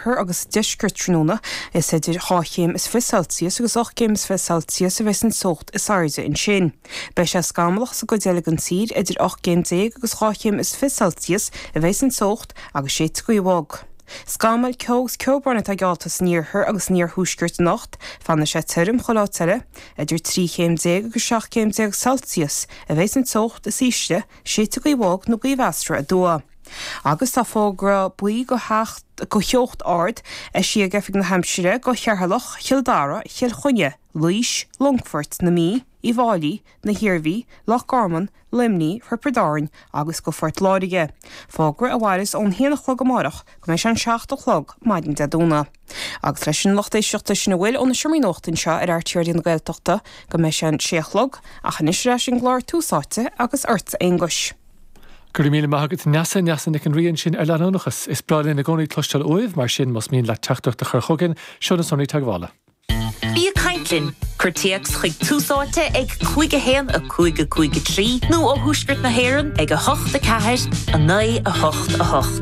thoir agus deisceart tráthnóna. Is idir dhá chéim is fiche Celsius agus ocht gcéim is fiche Celsius a bheas an teocht is airde ansin. Beidh sé scamallach sa gcuid eile den tír, idir ocht gcéim déag agus dhá chéim is fiche Celsius a bheas an teocht agus séidfidh gaoth bhog. Scamaill, ceo agus ceobrán atá geallta san iarthar agus san iarthuaisceart anocht. Fanfaidh sé tirim chuile áit eile. Idir trí chéim déag agus seacht gcéim déag Celsius a bheas an teocht is ísle, séidfidh gaoth bhog nó gaoth mheasartha aduaidh. Agus tá fógra buí go theocht ard eisithe ag Oifig na hAimsire go Cheatharlach, Chill Dara, Chill Chainnigh, Laois, Longfort, na Mí, Uíbh Fháilí, na hIarmhí, Loch Garman, Luimneach, Thiobraid Árann agus go Phort Láirge, fógra a mhaireas ón haon a chlog amárach go mbeidh sé an seacht a chlog maidin Dé Domhnaigh. Agus leis sin a lucht éisteachta sin a bhfuil ó na seomraí nuachta anseo ar RTÉ Raidió na Gaeltachta go mbeidh sé an sé a chlog ach anois ar ais ag an gclár Tús Áite agus ort a Aonghuis. Go raibh míle maith agat Neasa, Neasa Nic an Rí ansin ar leanúnachas. Is breá linn i gcónaí cloisteáil uaibh mar sin más mian leat teachtaireacht a chur chugainn, seo na sonraí teagmhála. Bí ag caint linn, cuir téacs chuig Tús Áite ag 5 1 5 5 3 nó ó thuaisceart na hÉireann ag 8 4 9 8 8.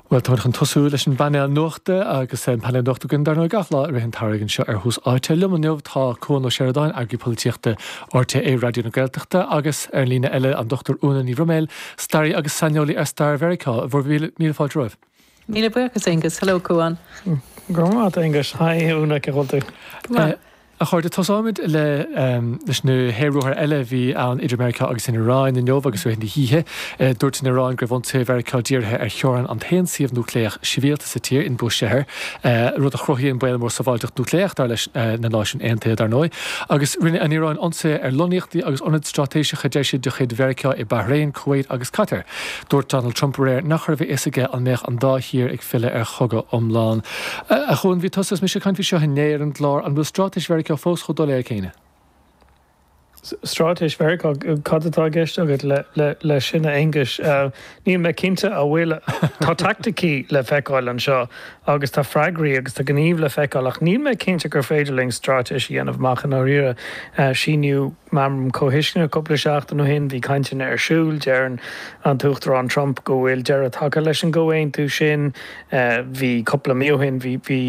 Bhuel, táimid chun tosú leis an bpainéal nuachta agus an painéal nuachta againn, dar ndóigh, gach lá i rith an tsamhraidh anseo ar Thús Áite. Liom inniu tá Cuan Ó Seireadáin, Eagarthóir Polaitíochta RTÉ Raidió na Gaeltachta, agus, ar an líne eile, an Dr Úna Ní Bhroiméil, staraí agus saineolaí ar stair Mheiriceá. Bhur míle fáilte romhaibh. Míle buíochas, Aengus. Hello, Cuan. Go raibh maith a't, Aengus. Haigh, Úna, cén chaoi a bhfuil tú? Go maith. A chairde, tosóimid le leis na haer-ruathair eile a bhí ann idir Meiriceá agus an Iaráin inniu agus rith na hoíche. Dúirt an Iaráin go raibh ionsaithe Mheiriceá dírithe ar theorainn an t-aon suíomh núicléach sibhialta sa tír, in Bushehr, rud a chruthaíonn baol mór sábháilteachta núicléach, dar leis na Náisiúin Aontaithe, dar ndóigh. Agus rinne an Iaráin ionsaithe ar lonnaíochtaí agus ionaid stráitéiseacha, deir siad, de chuid Mheiriceá i Bahrain, Kuwait agus Catar. Dúirt Donald Trump aréir nach raibh a fhios aige an mbeadh an dá thír ag filleadh ar chogadh iomlán. A Chuain, bhí tusa is mise ag caint faoi seo inné ar an gclár, an bhfuil stráitéis Mheiriceá fós chomh doiléir céanna? Stráitéis Mheiriceá? Cad atá i gceist agat leis sin, a Aonghuis? Níl mé cinnte an bhfuil. Tá teaicticí le feiceáil anseo agus tá freagraí agus tá gníomh le feiceáil ach níl mé cinnte gur féidir linn stráitéis a dhéanamh amach i ndáiríre. Síníodh. Meamram Comhthuisceana cúpla seachtain ó shin bhí cainteanna ar siúl. Deireann an tUachtarán Trump go bhfuil deireadh tagtha leis an gcomhaontú sin. Bhí cúpla mí ó shin bhí bhí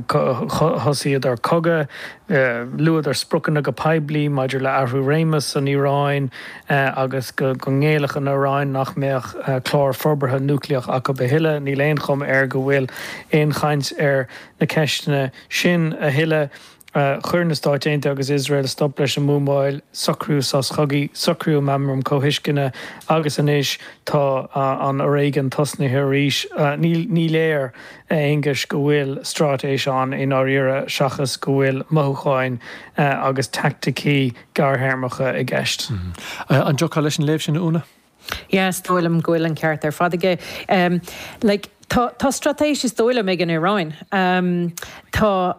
thosaíodar cogadh. Luadar spriocanna go poiblí maidir le athrú réimis san Iaráin agus go go ngéillfeadh an Iaráin nach mbeadh clár forbartha núicléach acu a thuilleadh. Níl aon chuma air go bhfuil aon chaint ar na ceisteanna sin a thuilleadh. Chuir na Stáit Aontaithe agus Iosrael stop leis an mbuamáil, socraíodh sos cogaidh, socraíodh meamram comhthuisceana agus anois tá an foréigean tosnaithe arís. Ní léir, a Aonghuis, go bhfuil straitéis ann i ndáiríre seachas go bhfuil mothúcháin agus teaicticí gearrthéarmacha i gceist. An dtiocfá leis an léamh sin, a Úna? Yes, is dóigh liom go bhfuil an ceart ar fad aige. Like, tá, tá straitéis is dóigh liom ag an Iaráin. Tá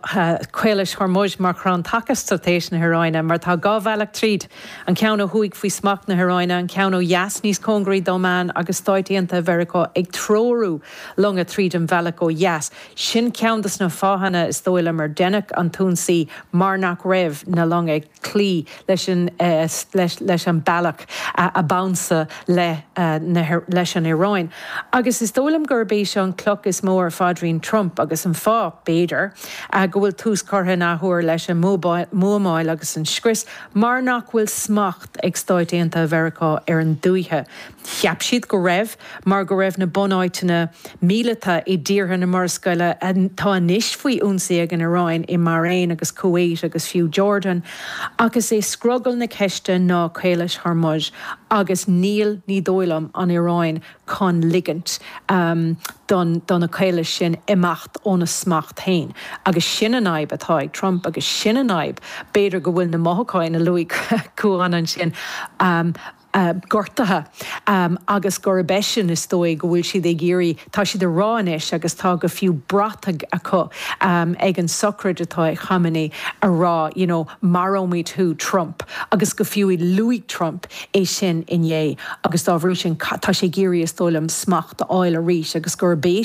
Caolas Hormuz mar chrann taca straitéis na hIaráine mar tá dhá bhealach tríd, an ceann ó thuaidh faoi smacht na hIaráine, an ceann ó dheas níos cóngaraí d'Oman agus Stáit Aontaithe Mheiriceá ag treorú longa tríd an bhealach ó dheas. Sin ceann de sna fáthanna is dóigh liom ar deineadh an t-ionsaí mar nach raibh na longa ag cloí leis an bealach a b'ansa leis an Iaráin. Agus is dóigh liom gurb é seo an cloch is mó ar phaidrín Trump agus an fáth, b'fhéidir, go bhfuil tús curtha in athuair leis an mbuamáil agus an scrios mar nach bhfuil smacht ag Stáit Aontaithe Mheiriceá ar an dúiche. Cheap siad go raibh, mar go raibh na bunáiteanna míleata i dtíortha na Murascaille atá anois faoi ionsaí ag an Iaráin, i mBairéin agus Kuwait agus fiú Jordan, ach is é scrogall na ceiste ná Caolas Hormuz agus níl, ní dóigh liom, an Iaráin chun ligint do do na caolais sin imeacht óna smacht féin. Agus sin an fhadhb atá ag Trump agus sin an fhadhb, b'fhéidir go bhfuil na mothúcháin a luaigh Cuán ansin, gortaithe agus gurb eisean is dóigh go bhfuil siad ag iarraidh, tá siad a rá anois agus tá go fiú brataigh acu ag an sochraid atá ag Khamenei a rá you know maróimid thú Trump agus go fiú luaigh Trump é sin inné agus dá bhrí sin tá sé ag iarraidh is dóigh liom smacht a fháil arís agus gurb é